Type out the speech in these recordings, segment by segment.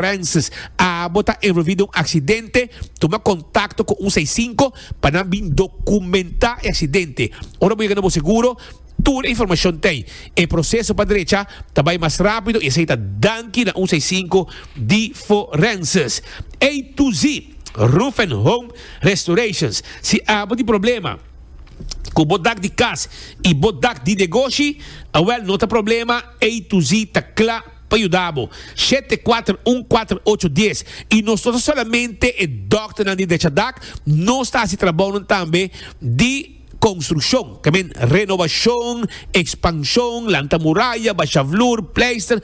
Francis, Abo ta envolvi den un aksidente, tuma kontakto ku un seis sinku pa nan bin dokumentá e aksidente. Ora bo yega na bo seguro, tur e informashon t'ei. E proseso pa drecha ta bai mas rápido i esei ta danki na un seis sinku di Forensis. A to Z Roof and Home Restorations, Si abo tin problema ku bo dak di kas i bo dak di negoshi, awèl no ta problema, A to Z ta kla. pa yuda bo. Shete kuater un kuater ocho dies i nos no ta solamente e dòkternan di Dechadak, nos ta hasi trabounan tambe di konstrukshon, ke men renobashon, ekspanshon, lanta muraya, basha vloer, pleister,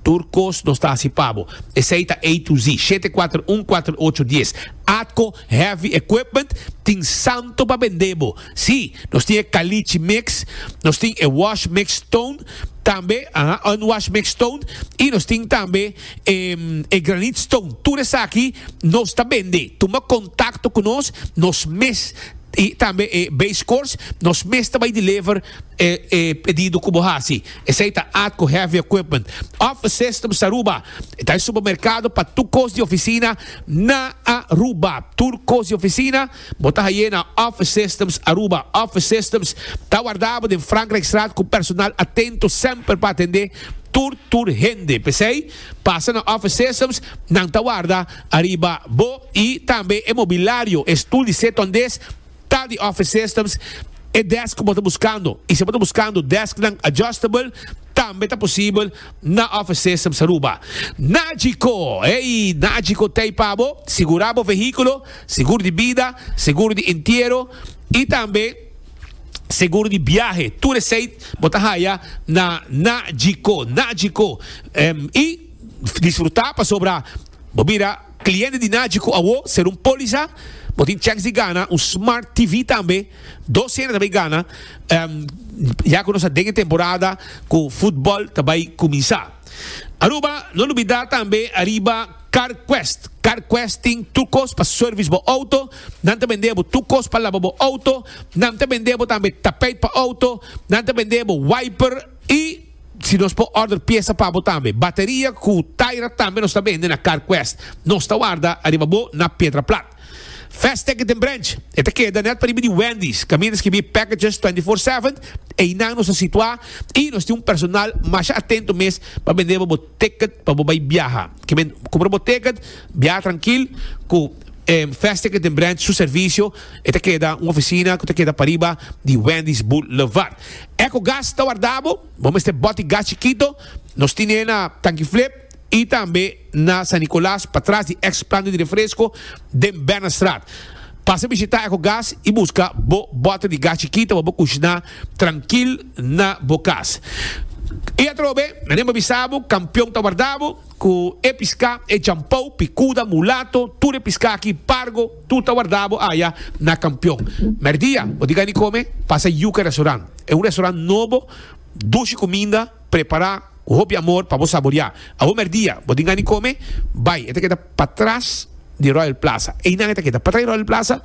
tur kos nos ta hasi pa bo. Esei ta A to Z, shete kuater un kuater ocho dies. Atko. Heavy equipment tin santo pa bendé bo. Sí, nos tin e Caliche mix, nos tin e Wash mix stone tambe, aha, unwash mix stone, y nos tin tambe e, e granite stone. Tur esaki nos ta bendé. Tuma contacto cu nos, nos mes, y tambe e base course, nos mes ta bay deliver e, e pedido cu bo haci. Esey ta Atco Heavy Equipment. Offices ta Aruba, ta e supermercado pa tur cos di oficina. Na Aruba, tur kos di ofisina bo ta hay'é na Office Systems Aruba. Office Systems ta wardabo den Frankrijkstraat ku personal atento semper pa atendé tur tur hende. P'esei, pasa na Office Systems, nan ta warda ariba bo i tambe e mobilario, e stul di setu andes, Tal di office systems e desk ku bo ta buskando i si bo ta buskando desknan adjustable tambe ta posibel na Office Systems Aruba. Nagico, ey, Nagico ta ei pa bo, sigura bo vehículo, seguro di bida, seguro di entiero i tambe seguro di biahe. Tur esei bo ta haya na Nagico. Nagico, em, i disfruta pasobra bo mira Cliente di Naji cu awo ser un poliza, bo tin checks di gana, un smart TV tambe, dos cena ta bay gana, ya cu nos ta den e temporada cu futbol ta bay cuminsa. Aruba, no lubida tambe ariba CarQuest. CarQuest tin tur cos pa service bo auto, nan ta bende bo tur cos pa laba bo auto, nan ta bende bo tambe tapijt pa auto, nan ta bende bo wiper, Y si nos por order pieza pa bo tambe. Bateria cu taira tambe nos ta bende na Car Quest. Nos ta warda ariba bo na Piedra Plat. Fast Ticket den Branch, e ta keda net pariba di Wendy's, caminda ta skibi Packages 24/7, einan nos ta situa y nos tin un personal masha atento mes pa bende bo bo. Ticket pa bo bai biaha. Ke men kumpra bo ticket, biaha trankil ku e Vestiket den Branch su servisio. E ta keda un ofisina ku ta keda pariba di Wendy's Boulevard. Ecogas ta warda bo. Bo mester bot e gas chikito. Nos tine na Tankiflip i tambe na San Nicolas pa tras di eks planta di refresko den Bernardstraat. Pasa bishita Ecogas i buska bo bota di gas chikito pa bo kushná. trankil na bo kas. I atrobe, Nane bo bisa bo, kampion ta warda bo, ku e piská, e djampou, pikuda, mulato, tur e piská aki, pargo, tur ta warda bo aya na kampion. Mèrdia, bo di gani kome? Pasa yuka restoran. E un restoran nobo, dushi kuminda. Prepará ku hopi amor pa bo saboriá. Awor mèrdia bo tin gana di kome? Bai, e ta keda patras di Royal Plaza. Einan e ta keda. Patras di Royal Plaza,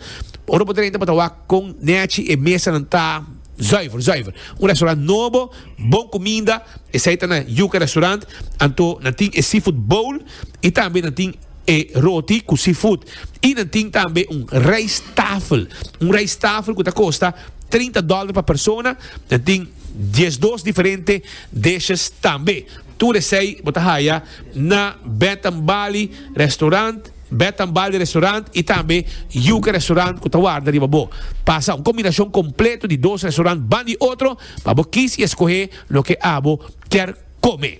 ora bo drenta bo ta wak kon nèchi e mesanan ta zùiver, zùiver. Un restaurant nobo, bon kuminda, esei ta na Yuca Restaurant, anto nan tin e seafood bowl i tambe nan tin. E roti ku seafood. I nan tin tambe un rijsttafel. Un rijsttafel ku ta kosta trinta dòler pa persona. Nan tin diesdos diferente dishes tambe. Tur esei bo ta haya na Bath and Bali Restaurant, Bath and Bali Restaurant i tambe Yuca Restaurant ku ta warda riba bo. Pasa un kombinashon kompleto di dos restaurant ban di otro pa bo kis i eskohe loke abo kier kome.